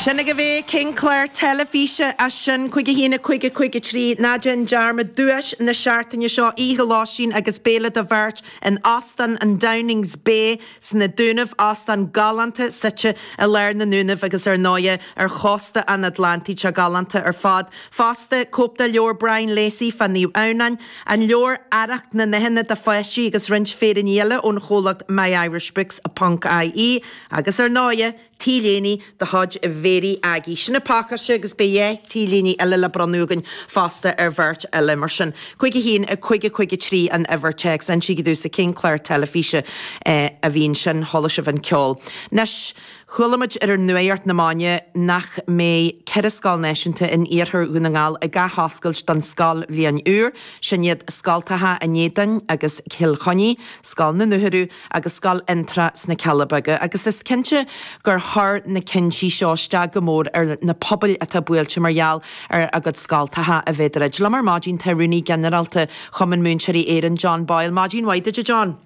Sin agaibh é, cén clár teilifíse as sin cúig a haon, a cúig, a cúig a trí. Ná déan dearmad duais na seachtaine seo, oíche lóistín agus béile do bheirt in Óstán an Downings Bay sna Dúnaibh, óstán galánta suite i lár na nDúnaibh agus ar ndóighe, ar chósta an Atlantaigh, teach galánta ar fad. Fosta, cóip de leabhar Brian Lacey fá Naomh Adhamhnán, an leabhar Arracht na nDathanna do pháistí agus roinnt féiríní eile ón chomhlacht myirishbooks ponc ie. Agus ar ndóighe, t-léine de chuid Mhéirí Aggie. Sin an pacáiste agus beidh dhá t-léine eile le bronnadh againn fosta ar bheirt eile. Mar sin, cúig a haon, a cúig a cúig a trí an uimhir téacs. An dtí go dtí sa cén clár teilifíse a bhíonn sin, chuala sibh an ceol. Anois, chuala muid ar nuaíocht na maidne nach mbeidh ceithre scoil náisiúnta in iarthar Dhún na nGall ag athoscailt don scoilbhliain úr, sin iad scoltacha an Éadain agus Cill Chainnigh, Scoil na Dúchoradh, agus scoil Fhionntrá sna Cealla Beaga, agus is cinnte gur chuir na cinntí seo isteach go mór ar na pobail atá buailte mar gheall ar a gcuid scoltacha, a bheith ag druid. Liom ar maidin tá Rúnaí Ginearálta Chumann Múinteoirí Éireann, John Boyle. Maidin mhaith duit, a John!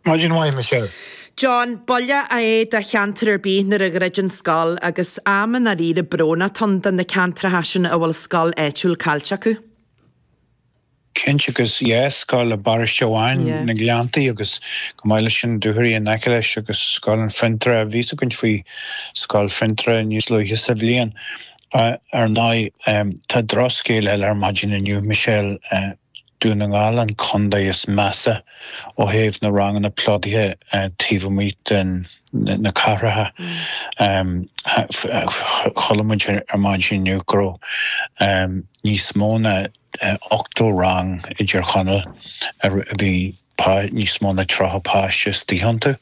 Maidin mhaith, Michelle. John, buille é do cheantar ar bith nuair a dhruideann scoil, agus am i ndáiríre brónach atá ann do na ceantracha sin a bhfuil scoil áitiúil caillte acu. Cinnte, agus dhá scoil i bparáiste amháin, Yeah. na Gleanntaí, agus chomh maith leis sin, Dúchoraidh in aice leis, agus scoil an Fhionntrá, a bhíos ag caint faoi scoil Fhionntrá níos luaithe sa bhliain. Ar ndóigh, tá drochscéal eile ar maidin inniu, Michelle, Dún na nGall an contae is measa ó thaobh na ranganna plódaithe taobh amuigh de na cathracha. Chuala muid ar maidin inniu go raibh níos mó ná. 80 rang i dTír Chonaill a bhí níos mó ná 30 páiste istigh iontu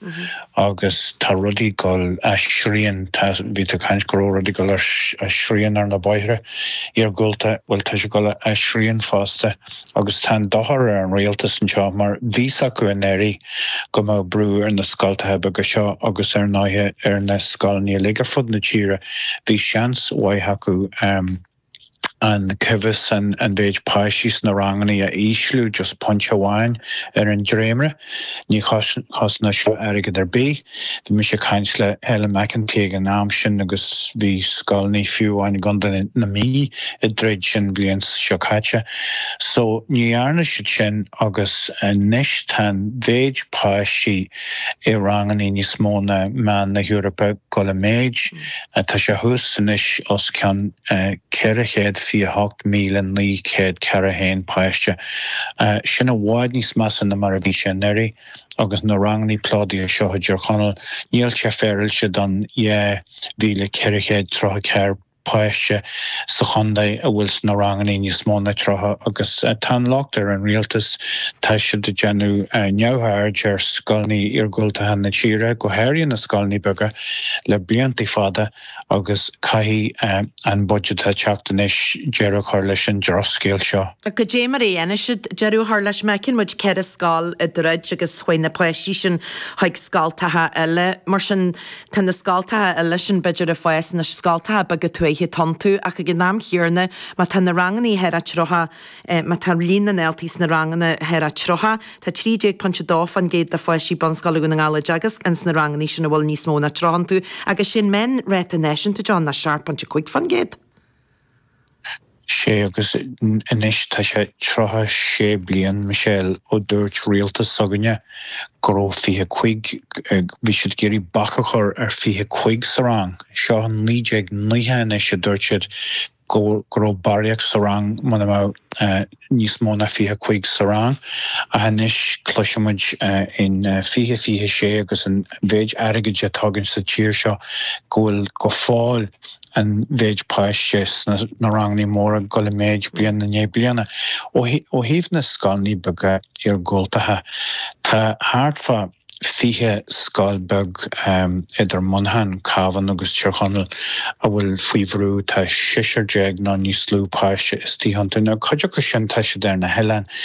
agus tá rudaí ag dul as srian, bhí tú ag caint go raibh rudaí ag dul as srian ar na bóithre iargúlta, bhuel tá sé ag dul as srian fosta agus tá an dochar ar an rialtas anseo mar bhí 's acu anuraidh go mbeadh brú ar na scoltacha beaga seo agus ar ndóighe ar na scoileanna uilig ar fud na tíre, bhí seans mhaith acu. an cóimheas, an mhéid páistí sna ranganna a ísliú just pointe amháin ar an dréimire. Ní chosnódh seo airgead ar bith. Bhí mise ag caint le Helen McEntee ag an am sin agus bhí scoileanna fiú amháin i gContae na Mí ag troid sin an bhliain seo caite. So ní dhearna siad sin agus anois tá an mhéid páistí, i ranganna níos mó ná meán na hEorpa ag gabháil i méid, tá sé thuas anois os cionn 428,941 páiste. Sin i bhfad níos measa ná mar a bhí sé anuraidh agus na ranganna plódaithe seo i dTír Chonaill, níl sé féaráilte don 2,434 páiste sa chontae a bhfuil sna ranganna níos mó ná 30 agus tá an locht ar an rialtas, tá siad ag déanamh neamhaird ar scoileanna iargúltacha na tíre, go háirithe na scoileanna beaga, le blianta fada agus caithfidh an budget atá ag teacht anois deireadh a chur leis an drochscéal seo. Goidé mar a dhéanfaidh siad deireadh a chur leis, feiceann muid ceithre scoil ag druid agus chuaigh na páistí sin chuig scoltacha eile, mar sin Tá na scoltacha eile sin, b'fhéidir, ag fás, na scoltacha beaga tuaithe dúnta, ach ag an am chéanna, má tá na ranganna thar a tríocha, má tá líon na ndaltaí sna ranganna thar a tríocha, tá 13.2% de pháistí bunscoile i nDún na nGall á dteagasc ins na ranganna sin a bhfuil níos mó ná tríocha iontu, agus is é an meán ráta náisiúnta, John, nach 7.5%? 'Sé agus anois tá sé tríocha sé bliain, Michelle, ó dúirt rialtas s'againne go raibh fiche cúig, bhí siad ag iarraidh bac a chur ar fiche cúig sa rang, seo naoi déag naocha anois a dúirt siad go raibh barraíocht sa rang muna mbeadh níos mó ná fiche cúig sa rang ach anois cloiseann muid in fiche, fiche sé agus an mhéid airgid atá againn sa tír seo go bhfuil go fóill an mhéid páiste sna ranganna móra ag dul i méid bliain i ndiaidh bliana. Ó thaobh na scoileanna beaga iargúltacha, tá thart fá. 20 scoil beag idir Muineachán, Cabhán agus Tír Chonaill a bhfuil faoi bhrú, tá seisear déag nó níos lú páiste istigh iontu. Cuid acu sin, tá siad ar na hoileáin.